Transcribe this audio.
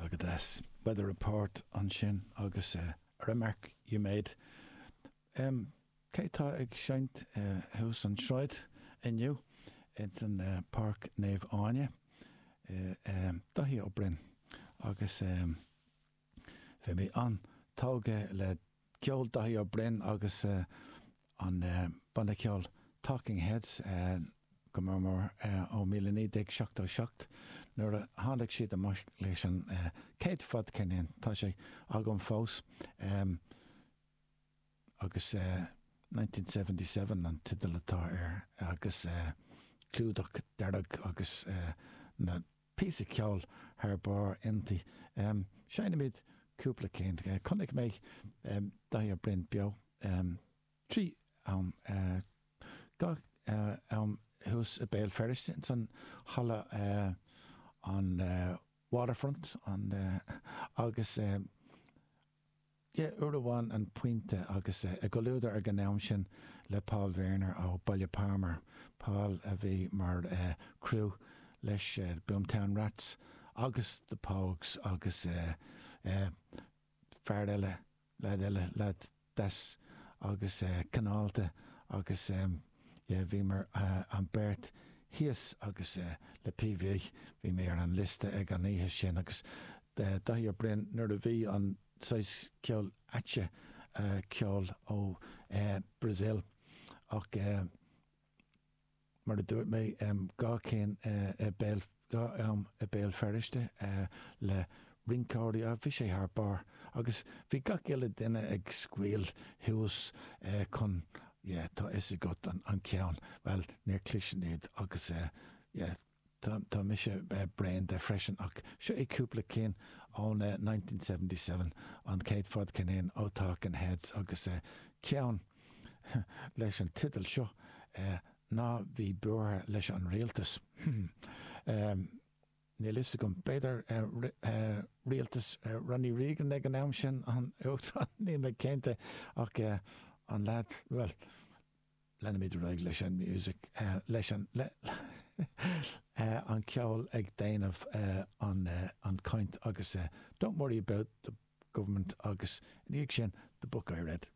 agus weather report, ansin agus a remark you made. Cé atá ag seinnt thuas an tsráid inniu ins an Páirc Naomh Áine? Daithí Ó Broin agus. Bhí mé an-tógtha le ceol Daithí Ó Broin agus an banna ceoil Talking Heads, go mór mór, ó 1977, nuair a tháinig siad amach leis an chéad fadcheirnín, tá sé agam fós, agus 1977 an teideal atá air, agus clúdach dearg agus na. píosa ceoil thar barr inti. Seinnimid cúpla cinn. Chonaic mé Daithí Ó Broin beo trí am dhá am thuas i Béal Feirste ins an halla an Waterfront agus Yeah uair amháin an pointe agus i gcomhluadar ag an am sin le Paul Verner ó Baile Phámar, Paul a bhí mar chriú leis Boomtown Rats agus The Pogues agus fear eile, leaid eile, leaid deas agus cineálta agus yeah bhíomar an beirt thíos agus le PV bhí mé ar an liosta ag an oíche sin agus Daithí Ó Broin nuair a bhí an saghas ceol ait ceol ó Brazil ach mar a dúirt mé dhá cinn i Béal dhá am i Béal Feirste le rinceoirí a bhí sé thar barr agus bhí gach uile duine ag scaoil thuas chun yeah tá fhios agat an ceann bhuel níor chloigh sin iad agus yeah tá mise bréan de freisin ach seo é cúpla cinn ón 1977 an chéad fadcheirnín ó Talking Heads agus ceann leis an teideal seo ná bí buartha leis an rialtas. Níl a fhios agam, b'fhéidir rialtas Ronnie Reagan ag an am sin, an Uachtarán, níl mé cinnte, ach an lead, bhuel, leanfaimid ar aghaidh leis an music, leis an, an ceol ag déanamh an chaint agus don't worry about the government agus ina dhiaidh sin, the book I read.